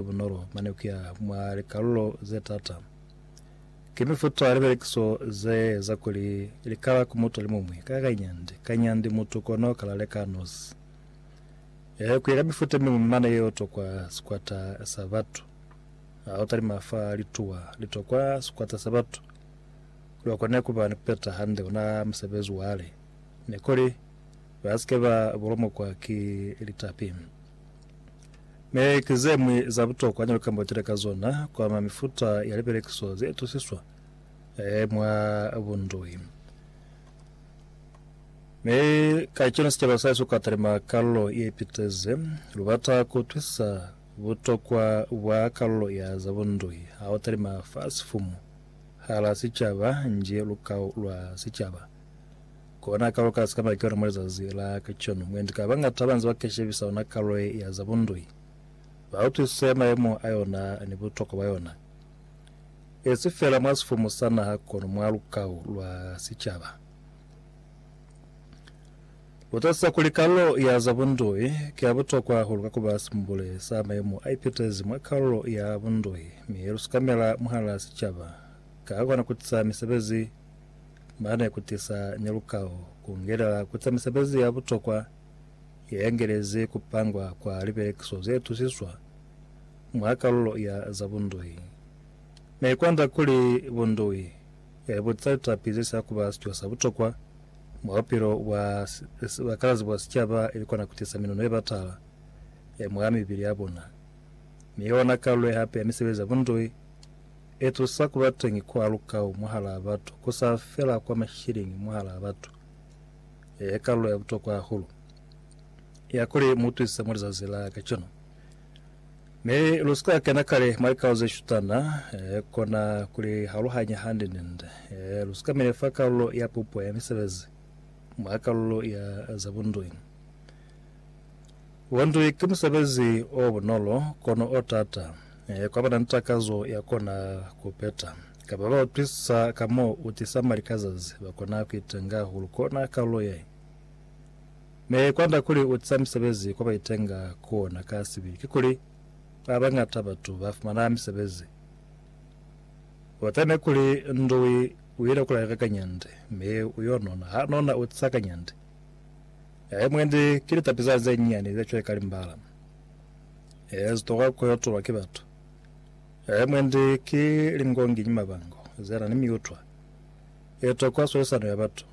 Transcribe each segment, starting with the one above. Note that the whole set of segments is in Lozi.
Ki bunolo mane kuya mwa likalulo ze taata. Ki mifuta ya libelekiso ze eza kuli likala ku mutu alimuñwi ka kanyandi kanyandi mutu kono kala leka nosi. Ee, kuya ka mifuta yemiñwi mane yeo tokwa sikwata sa batu. Ha utalima fa lituwa litokwa sikwata sa batu, kuli bakone kuba ni kupeta hande ona musebezi wale, nikuli basike ba bulomokwa ki litapi. Mi ki zemwi za butokwa ne lukamba lutile ka zona ku ama mifuta ya lipelekiso ze itusiswa mwa bundui. Mi ka cona sicaba sa Yesu ka talima kalulo ye piteze. Lu bata ku utwisisa butokwa bwa kalulo ya za bundui ha u talima fa sifumu hala sicaba nji lukau lwa sicaba. Kona kalo ka sika na kiona mwa lizazi la kacweno, mwendi ka bañata banze ba keshebisa ona kalo ye ya za bundui. Ba utwisise mayemo a yona ni butokwa bwa yona, e si fela mwa sifumu sa naha kono mwa lukau lwa sicaba. Lu tatisisa kuli kalo ya za bundui ki ya butokwa hahulu ka kuba simbule sa mayemo a ipitezi mwa kalo ya bundui, mi lu sikamela mwahala sicaba ka kona kutisa misebezi, ba ne ku tisa ni lukao ku ngelela ku za misebezi ya butokwa ye yangelezi ku pangwa kwa libelekiso ze tusiswa mwa kalulo ya za bundui. Ne i kwanda kuli bundui ya libuti za litapi ze sila ku ba sico sa butokwa mwa bupilo bwa bakalazi bwa sicaba ili kona ku tisa minuno ye batala ya mwa mibili ya bona, mi yona kalulo ye hape ya misebezi ya bundui. Etusa kubateñi kwa lukau mwahalaa batu, kusa fela kwa mashilingi mwahalaa batu, e kalulo ya butokwa hahulu ya kuli muutwisize mwa lizazi la kacenu. Mi lusika kena kale mwa likau zeshutana, e kona kuli haluhanya hande nende. E lusika mine fa kalulo ya pupo ya misebezi mwa kalulo ya za bundoi. Wondwi ki musebezi o bunolo kono o t'ata kwa ba na ni takazo ya kona ku peta. Kapa ba utwisisa ka m'o u tisa mali ka zazi, ba kona ku itenga hahulu kona kalulo ye ne kwanda kuli u tisa misebezi kwa ba itenga ku ona. Ka sibi, kikuli ba bañata batu ba fumana misebezi. U teme kuli, Ndwi u ile ku laleka kanyande, mi u yo nona. Ha nona, u tisa kanyande. Ee, mwendi, ki litapizana ze nyinyani ze cweka limbala. Ee, ze toka ku yotulwa ki batu. Ee, mwendi, ki lingonginyi mabango ze na ni miutwa ye to kwa swalisano ya batu.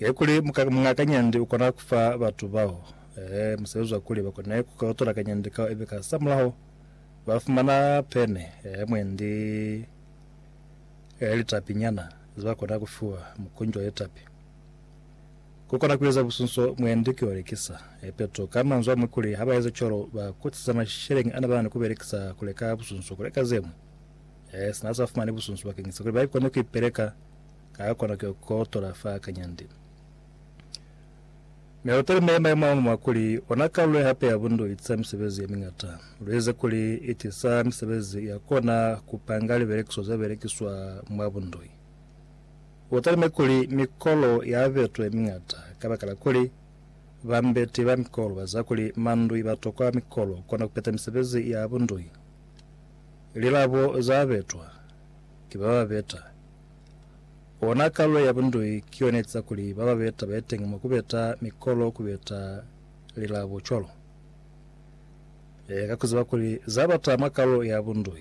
Ee, kuli muka, muñ'a kanyandi u kona ku fa batu bao, ee, musebezi wa kuli ba kone ku ka yotola kanyandi kao ibe ka sa mulaho ba fumana pene, ee, mwendi, ee, litapi nyana ze ba kona ku fiwa, mukunji wa litapi. Ku kona ku eza busunso mwendi ki belekisa. Epeto ka manzwi a mwi kuli, ha ba ezi cwalo, ba kutisa masheleñi a ne ba na ni ku belekisa ku leka busunso ku leka ze ñwi. Ee, sina za fumani busunso bakeñisa kuli ba kone ku ipeleka, ka a kona ku yo kotola fa kanyandi. Mi lu talime mayemo a ñwi mwa kuli, ona kalulo ye hape ya bundu i tisa misebezi ye miñata. Lu eze kuli i tisa misebezi ya kona ku panga libelekiso ze belekiswa mwa bundu. U talime kuli mikolo ya betwe miñata kabakala kuli bambeti ba mikolo baziba kuli mandui ba tokwa mikolo kona kupeta misebezi ya bundui. Lilabo za betwa ki ba ba beta. Ona kalulo ya bundui ki yona etiza kuli ba ba beta ba ye teñi mwa kubeta mikolo kubeta lilabo cwalo ka kuziba kuli za bata mwa kalulo ya bundui.